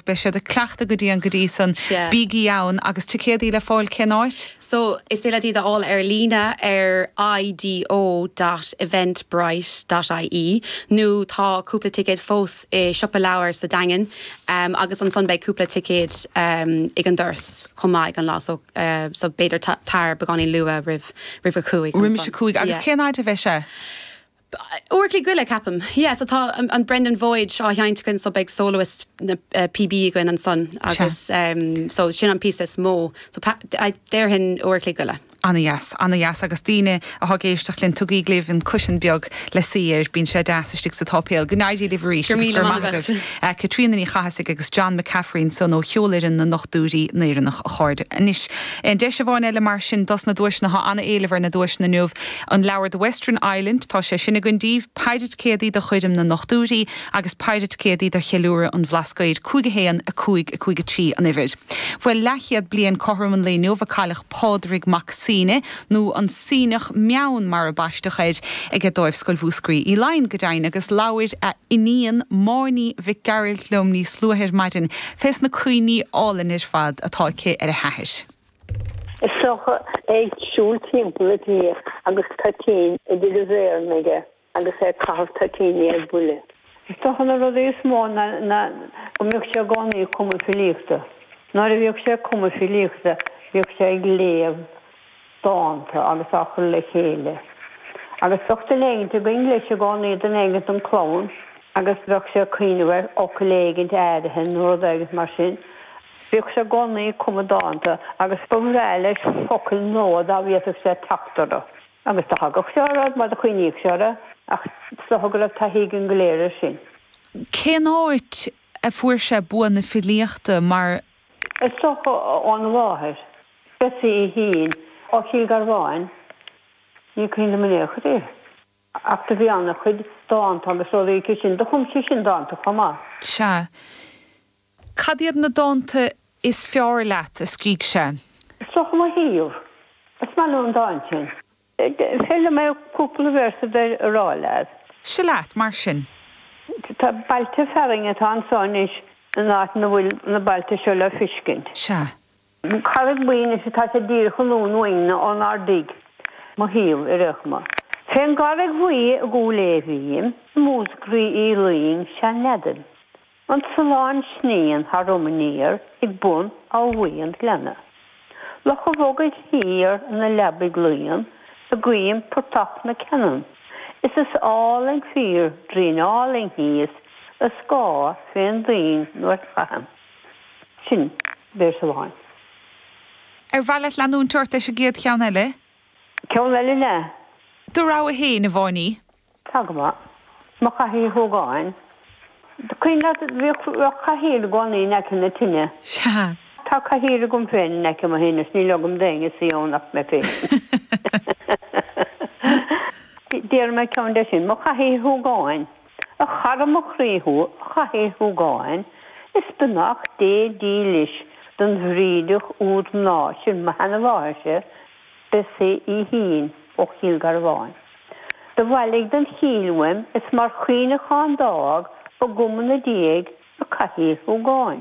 beidh siad ag cleachtadh go dian go dtí san. Sea. Bígí ann! Agus ticéadaí le fáil cén áit? So, is féidir leat iad a fháil ar líne ar i-d-o dot eventbrite dot i-e nó tá cúpla ticéad fós i Siopa Leabhar sa Daingean agus ansan beidh cúpla ticéad ag an doras chomh maith ag an lá so so b'fhéidir tar beagáinín luath roimh a cúig ansan. Roimis a cúig. Agus Yeah. cén fhaid a bheidh sé? Uair a chloig go leith, ceapaim. Yeah, so tá an Brendan Voyage seo á sheinnt againn so beidh soloist na píbe againn ansan Sea. agus em so sin an píosa is mó so pa- I déarfainn uair a chloig go leith. Ana dheas, ana dheas agus daoine atá ag éisteacht linn tugaíg libh an cúisín beag le suí air, bíonn sé deas istigh sa tsáipéal. Go n-éirí libh arís Go raibh agus míle go raibh maith maith agat. agaibh. Eh, Caitríona Ní Chathasaigh agus John McCaffrey ansan ó Cheolfhoireann na nDochtúirí nÉireannach, a chairde. Anois, eh, deis amháin eile mar sin dos na duaiseanna, tá ana-éileamh ar na duaiseanna inniu. An leabhar The Western Island, tá sé sin againn daoibh, péire ticéadaí do Choirm na nDochtúirí agus péire ticéadaí do Cheiliúradh an Bhlascaoid, 5 1, 5, 5 3 an uimhir. Bhuel, leathchéad bliain cothrom an lae inniu a cailleadh Pádraig Mac Suibhne, nó an Suibhneach Meann mar a baisteadh air, aige Dámhscoil Mhúscraí Uí Fhloinn, go deimhin, agus labhair a iníon Máirín Mhic Gearailt liom níos luaithe ar maidin fés na cuimhní álainn ar fad atá aici ar a hathair. Is dócha é ag siúl timpeall an tí agus toitín idir a mhéireanna aige agus é ag caitheamh toitíní ar buile. Is dócha na rudaí is mó na na go mbíodh sé i gcónaí ag cumadh filíochta. Nuair a bhíodh sé ag cumadh filíochta bhíodh sé ag léamh dánta agus á chur le chéile. Agus bheadh dán éigint againn leis i gcónaí dán éigint don chlann agus bheadh sé ag cuimhneamh ar fhocal éigint áirithe nó rud éigint mar sin Bhíodh sé i gcónaí ag cumadh dánta agus ba bhreá leis focail nua dá bhféadfadh sé teacht orthu. Agus do thagadh sé orthu, mar do choinníodh sé orthu, ach is dócha go raibh taithí againn go léir air sin. Cén áit a fuair sé bua na filíochta mar. Is dócha óna mháthair, Bessie Shine, ó Chill Garbháin, ní cuimhin liom in aon chor í, ach do bhí ana-chuid dánta agus rudaí aici sin. Do chum sí sin dánta chomh maith. Sea. Cad iad na dánta is fearr leat a scrígh sé? Is dócha mo shuíomh. Is maith liom an dán sin. B'fhéidir liom cúpla véarsa de a rá leat. Seo leat, mar sin. Tá bailte fearainn atá anso anois in áit 'na bhfuil na bailte seo le fiscint. Sea. Carraig Bhuí anois atá sé díreach anonn uainne ónár dtig. Mo shuíomh déarfaidh mé. Fé'n gCarraig Bhuí i gCúil Aodha bhím, i Músgraí Uí Fhloinn sea neadaim. An Sulán sníonn tharam aniar ag bun Áth Bhuí an Ghleanna. Loch an Bhogaigh thiar ina leabaidh luíonn, i gcoim portach na Ceannan. Is is álainn fíor Doirín Álainn thíos, a scáth fé'n dtuinn nuair chaithim. Sin véarsa amháin. Ar mhaith leat leanúint ort leis an gcéad cheann eile? Ceann eile le? Do rogha fhéin, a Mháiní. Tá go maith. Mo chathaoir shúgáin. Is cuimhin leat, bhíodh cathaoir i gcónaí in aice na tine. Sea. Tá cathaoir agam féin in aice mo thine is ní leogaim d'éinne suí ann ach mé féin. Déarfaidh mé ceann de sin. Mo chathaoir shúgáin. A chara mo chroí thú, a Chathaoir shúgáin, Is beannacht Dé dílis don bhrídeach úd mná sin mo sheanamháthairse, Bessaí Uí Shíoin ó Chill Garbháin. Do bhailigh don chill uaim is mar chuimhneachán d'fhág agam 'na diaidh a cathaoir shúgáin.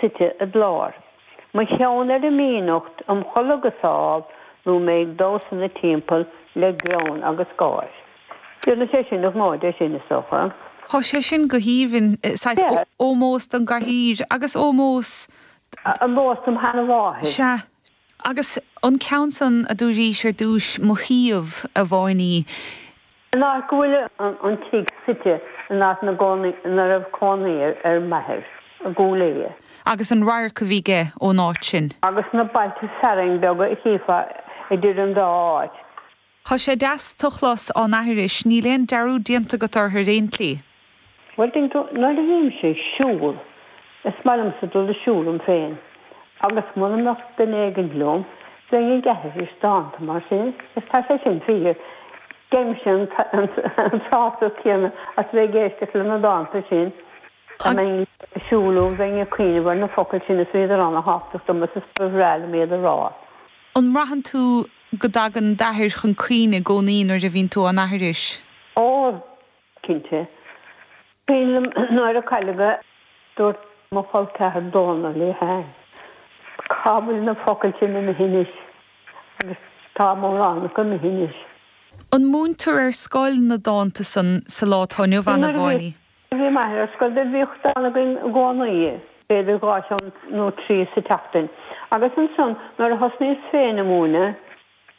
suite id lár. Mo cheann ar a mínucht im chodladh go sámh nó mé ag damhsa 'na timpeall le greann agus gáir. Déanfaidh sé sin an gnó de sin, is dócha. Tá sé sin go haoibhinn, saghas Sea. ómós don gcathaoir agus ómós d'. ómós don tseanamháthair. Sea. Agus an ceann san a dúraís ar dtúis, mo shuíomh, a Mháiní. An áit go bhfuil an tigh suite an áit ina raibh cónaí ar m'athair i gCúil Aodha. Agus an radharc a bhí aige ón áit sin. Agus na bailte fearainn beaga a chífeá idir an dá áit. Thá sé deas, tú a chlos á n-aithris, níl aon dearúd déanta agat ortha ar aon tslí. Bhuel, tuigeann tú, nuair a bhímse ag siúl, is maith liomsa dul ag siúl liom féin, agus mura mbeadh duine éigin liom, bheinn ag aithris dánta mar sin, is tá sé sin fíor, gheibhimse an sásamh céanna as a bheith ag éisteacht le na dánta sin, dá mbeinn ag siúl liom, bheinn ag cuimhneamh ar na focail sin is bhíodar ana-thábhachtach dom is is ba bhreá liom iad a rá. An mbraitheann tú go dtagann d'athair chun cuimhne i gcónaí nuair a bhíonn tú á n-aithris? Ó, cinnte. Is cuimhin liom nuair a cailleadh é dúirt mo cholceathair Dónal Uí Sheighin. Cá bhfuil na focail sin imithe anois? Agus tá mórán acu imithe anois. An múintear ar scoil na dánta san sa lá atá inniu ann, a Mháiní? Nuair a bhí m'athair ar scoil do bhíodh dán againn i gcónaí, b'fhéidir dhá cheann nó trí sa tseachtain. Agus ansan nuair a thosnaíos féin ag múineadh,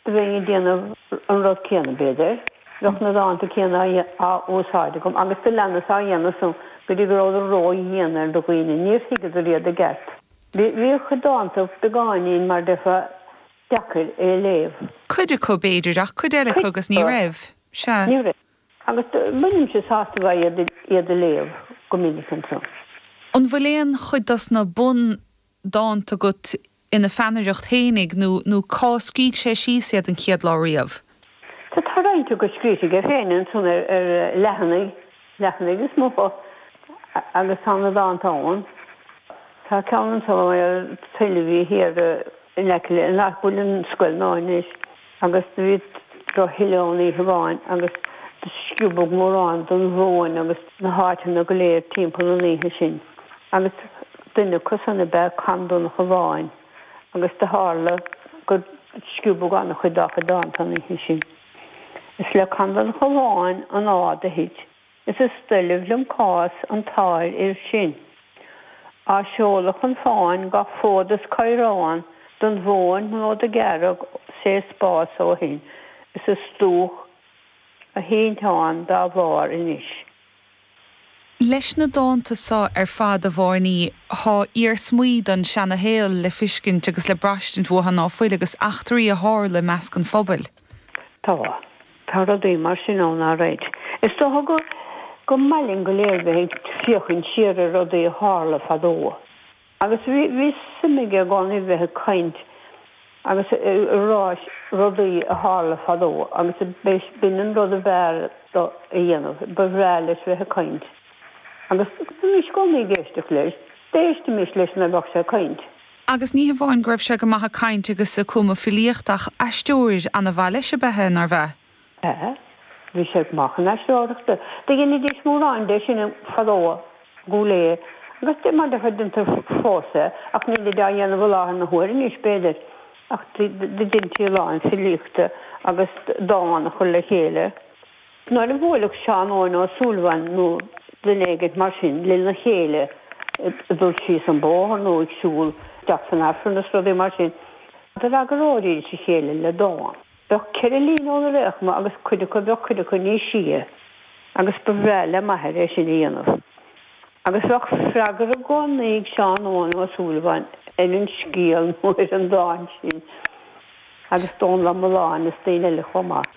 bheinn ag déanamh an rud céanna, b'fhéidir. Bheadh na dánta céanna á úsáid agam agus do leanas á dhéanamh san go dtí go rabhadar ró-dheacair do dhaoine. Níor thuigeadar iad i gceart. Bhí a chuid dánta beagáinín mar a déarfá deacair a léamh. Cuid acu, b'fhéidir, ach cuid eile acu agus ní raibh. Sea. Ní raibh. Agus bainimse sult as iad a léamh go minic ansan. An bhfuil aon chuid dos na bun. dánta agat ina pheannaireacht fhéinig nó nó cá scrígh sé síos iad an chéad lá riamh? Sea, tá roinnt acu scríte aige féin ansan ar leathanaigh, leathanaigh is mó atá agus tá na dánta ann. Tá ceann ansan ar thuile a bhí thiar in aice le háit a bhfuil an scoil nua anois. agus do bhí drochthuile ann oíche amháin agus do sciobadh mórán den mhóin agus na háiteanna go léir timpeall an oíche sin agus duine acu san ab ea Con Donncha Bháin agus do thárla gur sciobadh an-chuid dá chuid dánta an oíche sin. Is le Con Donncha Bháin an fhád a thit Is is doilbh liom cás an tsáirfhir sin, á seoladh chun fáin gach fód is caorán don mhóin nó do ghearradh sé spás ó shin is is dubhach a thinteán dá bharr anois. Leis na dánta so ar fad, a Bharney, tá iarsmaí den seana-shaol le fiscint agus le braistint uatha ná fuil agus eachtraí a tharla i measc an phobail. Tá. Tá rudaí mar sin ann, alright. Is dócha go go mba mhaith linn go léir bheith ag féachaint siar ar rudaí a tharla fadó. Agus bhí, bhí suim aige i gcónaí bheith ag caint agus ag rá rudaí a tharla fadó agus b'in an rud ab fhearr dó a dhéanamh. Ba bhreá leis bheith ag caint. Agus bhímis i gcónaí ag éisteacht leis. D'éistimis leis nuair a bheadh sé ag caint. Agus ní hamháin go raibh sé go maith ag caint agus ag cumadh filíocht ach aisteoir ana mhaith leis ab ea é, nárbh ea? B'ea, bhí sé go maith chun aisteoireachta. Do dheinidís mórán de sin fadó go léir agus de mar de chuid deintear fós é ach nílid á dhéanamh i láthair na huaire anois, b'fhéidir, ach do deintí a lán filíochta agus dán a chur le chéile Nuair a bhuailfeadh Seán Eoin Ó Súilleabháin nó duine éigint mar sin lena chéile ag dul síos an bóthar nó ag siúl isteach san Aifreann is rudaí mar sin, d'fhreagaróidís a chéile le dán. Bheadh ceithre líne óna réchma agus cuid acu, bheadh cuid acu níos sia agus ba bhreá le m'athair é sin a dhéanamh. Agus bheadh freagra i gcónaí ag Seán Eoin Ó Súilleabháin ar an scéal nó ar an dán sin. agus Dónal Ó Mulláin is daoine eile chomh maith.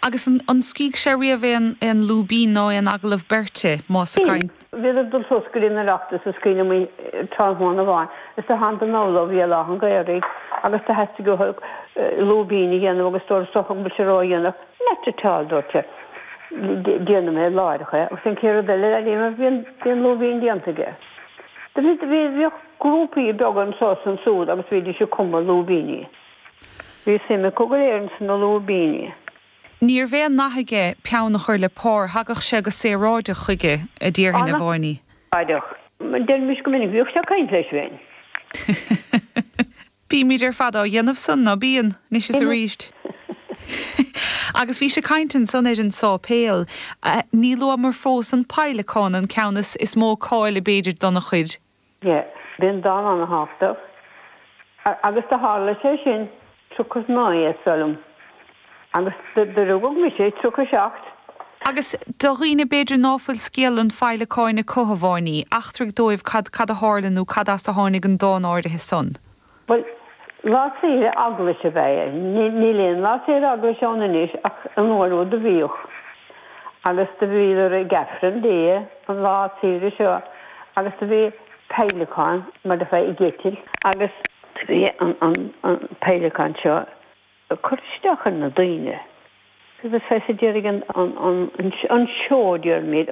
Agus an scrígh sé riamh aon aon lúibín nó aon agallamh beirte, más ea? Bhí. Bhíodar ag dul suas go dtí an Oireachtas is cuimhin liom tráthnóna amháin is do tháinig Dónal Ó hÉalaithe an Ghaorthaidh agus do theastaigh uathu lúibín a dhéanamh agus dúrtsa an bhfuil sé ró dhéanach not at all dúirt sé déanfaidh mé láithreach é agus an chéad rud eile a dhéanamh bhí an bhí an lúibín déanta aige. Do bhí bhí bhíodh grúpaí beaga anso is ansúd agus bhídís ag cumadh lúibíní. Bhí suim acu go léir ins na lúibíní. Níorbh aon nath aige peann a chur le pár, thagadh sé go saoráideach chuige, a déarfainn, a Mháiní. An-saoráideach. Deirimis go minic, bhíodh sé ag cainnt leis féin. Bímid ar fad á dhéanamh san, ná bíonn? Anois is arís. Agus bhís ag cainnt ansan ar an sáipéal. Ní luamar fós an peidhleacán, an ceann is mó cáil b'fhéidir dona chuid. B'in dán ana-thábhachtach agus do tharla sé sin triocha is naoi is dóigh liom agus do rugadh mise triocha seacht. Agus do dhaoine b'fhéidir ná fuil scéal an Pheidhleacáin acu, a Mháiní, eachtraigh dóibh cad a tharla nó cad as a tháinig an dán áirithe san. Bhuel, lá saoire Eaglais ab ea é. Níl aon lá saoire Eaglais ann anois ach an uair úd do bhíodh. Agus do bhíodar ag Aifreann Dia an lá saoire seo agus do bhí peidhleacán mar do bheadh ag eitilt agus do bhí an peidhleacán seo ag cur isteach ar na daoine. Agus feicfidh, déarfaidh an seoid, déarfaimid.